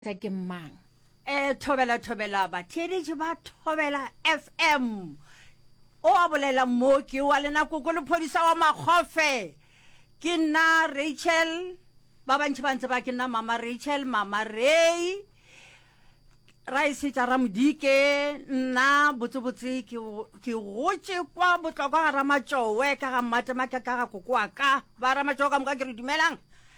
tsa ke mang e thobela thobela batheeletši ba thobela fm o a bolela mo ke wa lena koko lephodisa wa makgofe ke nna rachel ba bantši ba ntse ba ke nna mama rachel mama ray ra e setša ramodike nna botsebotse ke gotše kwa botlokwa ga ramatšowe ka ga mmatema ka ka ga kokoa ka ba ramatšowe ka moka ke re dumelang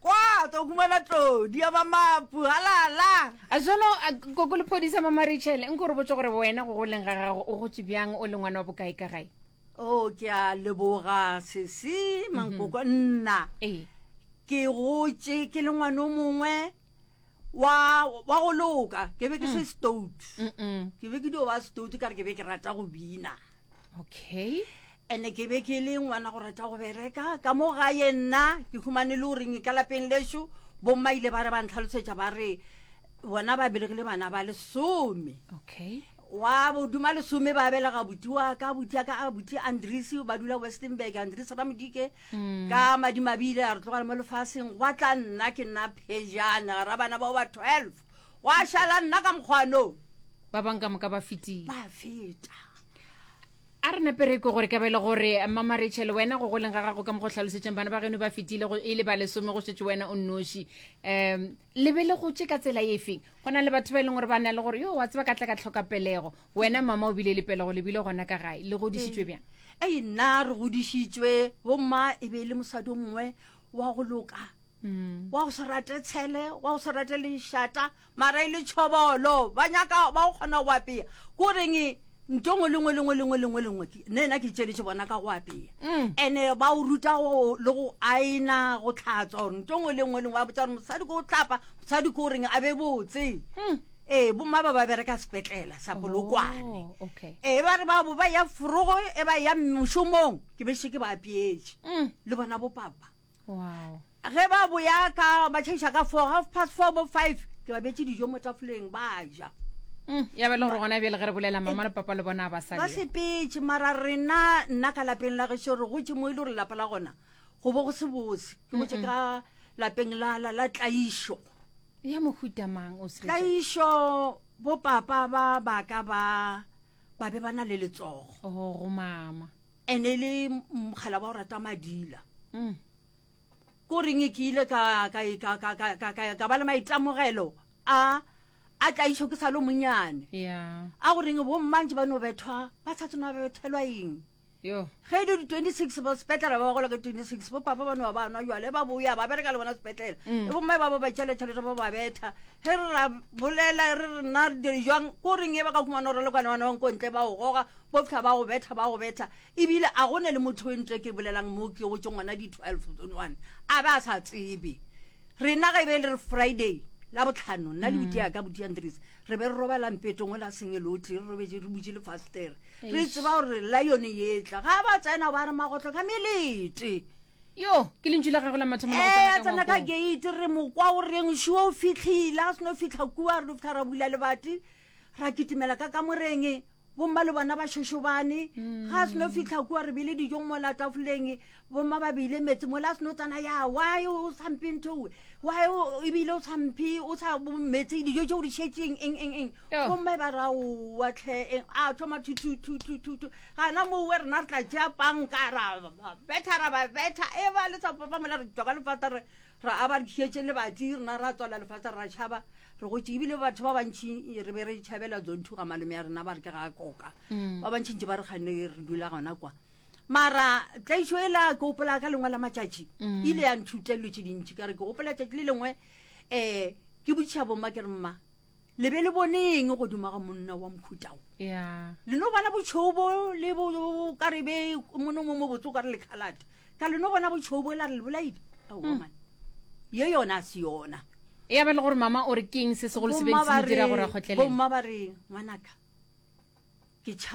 Kwa, ka humana tlodi ya ba mapu, halala! A Jalo, a, koko Lephodi sa Mama Rachel, nko re botse gore wena go goleng ga gago o gotse bjang, o le ngwana wa bokae ka gae? Oh, ke a leboga, sesi, mankoko, mhm. nna. Ee. Ke gotse, ke le ngwana o mongwe, wa, wa go loka, ke be ke se mm. stout. Ke be ke dio ba stout, ka re ke be ke rata go bina. okay ene ke be ke le ngwana go rata go bereka ka mo gae nna ke humane le goreng ka lapeng lešo bomma ile ba re ba ntlhalosetša ba re bona ba belegile bana ba lesome okay wa boduma lesome ba belega buti wa ka buti ya ka a buti andres ba dula westernburg andres ramodike mm. ka madimabile a re tlogale mo lefaseng gwa tla nna ke nna phejana ra bana bao ba twelve Gwa šala nna ka mokgwanong. Ba bang ka moka ba fetile. Ba feta. A re napere ko gore ka bele gore mama Rachel wena go goleng ga gago ka mo go hlalosetšeng bana ba geno ba fetile go e le ba lesome go šetše wena o nnoši um le be le gotše ka tsela e feng go na le batho ba e leng gore ba na le gore yo wa tseba ka tla ka tlhoka pelego wena mama o bile le pelego le bile gona ka gae le godišitšwe bjang ee nna re godišitšwe bomma e be e le mosadi o mongwe wa go loka wa go se rate tshele wa go se rate lešata mara e le tšhobolo ba nyaka ba go kgona go apea ko reng ntongo lengwe lengwe lengwe lengwe lengwe ne na ke tšeletše bona ka go apea mm. ene ba o ruta le go aena go tlhatswa gore ntongo lengwe lengwe ba botsa gore mosadi ko o tlapa mosadi ko o reng a be botse mm. ee bomma ba ba bereka sepetlela sa polokwane oh, ee ba re babo ba ya forogo e ba ya mošomong ke bešeke ba apeetše mm. le bona bopapa Wow. ge ba boya ka ba tšhaiša ka four half past four bo five ke ba betse dijo mo tafoleng ba ja Mm, ya ba e le gore gona bjale ge re bolela mama le papa le bona ba sa ba le sepetse mara rena nna ka lapeng la gešo re gotse mo e le gore lapa la gona go bo go se bose ke gotse ka lapeng la la la tlaišo ya mohuta mang o se tlaišo bo papa ba baka ba ba be ba na le letsogo go mama ene e le mokgalaba o rata madila mm. ko reng e ke ile ka ba le maitamogelo a a tla išo ke sa le monyane a go reng bommantse ba no bethwa ba sa tsena ba bethelwa eng ge e le di-twenty six ba sepetlela ba bagola ka twenty six bo papa ba no ba nwa jale ba boya ba bereka le bona sepetlela mm. e bomme ba ba ba tšele tšhelete ba ba betha ge re ra bolela re rena jang ko reng e ba ka kumana gore le kwane bana bang ko ntle ba o goga Bopša ba go betha, ba go betha. Ebile a go ne le motho we ntle ke bolelang mo ke go tšo ngwana di 12 zone one. A ba sa tsebe. Rena ge be le re Friday la botlhano nna le buti ya ka buti ya Ndris re be re robala mpetong o la sengelotli re robetse re butše le fastere re tseba gore la yone yetla ga ba tsena ba re magotlo ka melete yo ke lentšu la gagwe la mathomo eh, tsena ka gate re mokwa o reng shuo o fitlhile a seno fitlha kua re lo fitlha ra bula lebati ra kitimela ka kamoreng bomma le bona ba šošobane ga a seno fitlha kua re bile dijong mo la tafoleng bomma ba beile metse mo la seno tsana ya why o samphe nthoe why ebile o samphe o sa metse dijo tse o di šetseng eng eng eng bomma ba ra owa tlhe e, a thoma thuthuthuthuthu gana mowe rena re tla tšea panka ra betha ra ba betha e ba le sa papa mola re tšwa ka lefata re Ra aba re tšhietše lebati, rena ra tswala lefase ra tšhaba, re gotše. Ebile batho ba bantši re be re tšhabela Zonthu ga malome ya rena ba re ke ga a koka. Ba bantši ntši ba re kganne re dula gona kwa. Mara tlaišo e la ke gopola ka lengwe la matšatši e ile ya nthuta dilo tše dintši ka re ke gopola tšatši le lengwe um ke botšiša bomma ke re mma le be le bone eng godimo ga monna wa mohuta o ya le no bona botšhou bo le bo bo- ka re be mono mo mobotse o ka re lekhalate ka le no bona botšhou bo la re le bolaile aowa Hmm. man ye yona a se yona ya ba le gore mama o re keng se segolo se beng Bomma se ba mo dira re- gore a kgotlelele bomma ba re ngwanaka ke tšhaba